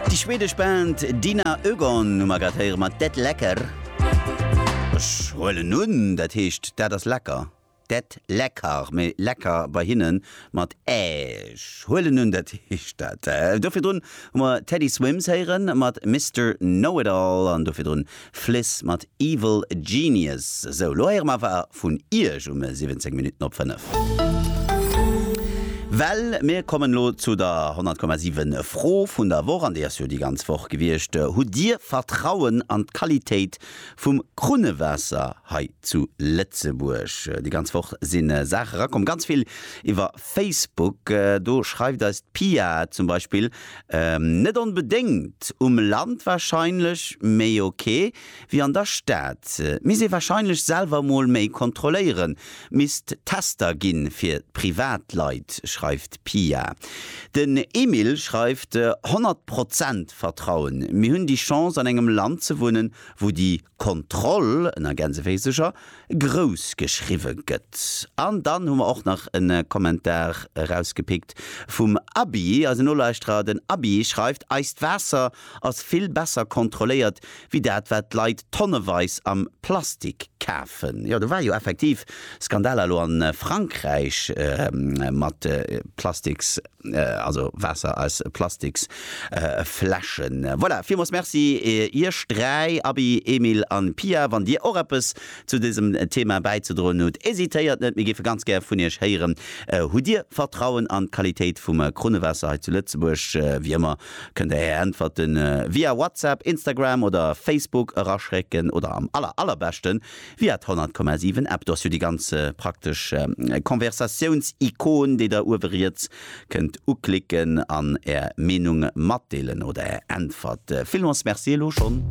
Déi schwedesch Band Dina Ögon hu mer grad héiere mat Det läcker. Ech huelen un, dat heescht dat ass lecker. Det läcker, mee lecker bei hinnen mat ä. Ech huelen un, dat heescht dat. Do virdrun hu mer Teddy Swims héiere mat Mister Know It All an do virdrun Fliss mat Evil Genius. Sou, lo héiere mer awer vun Iech um 17 Minutten op 5. Well mir kommen elo zu der 100,7 Fro vun der Woch, an déi ass jo déi ganz Woch gewiescht, Hutt Dir Vertrauen an d'Qualitéit vum Krunnewaasser hei zu Lëtzebuerg? Déi ganz Woch si Saache rakomm, ganz vill iwwer Facebook, do schreift eis d'Pia zum Beispill, Net onbedéngt, um Land warscheinlech méi ok wéi an der Stad. Misst ee warscheinlech selwer mol méi kontrolléieren. Misst Tester gi fir d'Privatleit, schreift d'Pia. Den Emil schreift, 100 Prozent Vertrauen, mir hunn déi Chance an engem Land ze wunnen, wou déi Kontroll ënner Gänseféisercher grouss geschriwwe gëtt. An dann hu mer och nach en Kommentar erausgepickt vum Abby, eisen Nolauschterer. Den Abby schreift, Eist Waasser ass vill besser kontrolléiert wéi dat, wat d'Leit tonneweis am Plastik kafen. Jo, do war jo effektiv Skandaler elo a Frankräich mat Plastiks. Also Waasser aus Plastiks Fläschen. Voilà, villmools Merci Iech 3, Aby, Emil an Pia. Wann Dir och eppes zu dësem Thema bäizedroen hutt, hesitéiert net, mir géife ganz gär vun Iech héieren. Hutt Dir Vertrauen an d'Qualitéit vum Krunnewaasser hei zu Lëtzebuerg? Wéi ëmmer kënnt Der Är Äntwerte via WhatsApp, Instagram oder Facebook eraschécken oder am aller aller beschten Viat 100,7 App, do ass jo déi ganz praktesch Konversatiouns-Ikon, déi der uewe riets kënnt uklicken an är Meenung matdeelen oder är Äntwert. Villmols Merci elo schonn.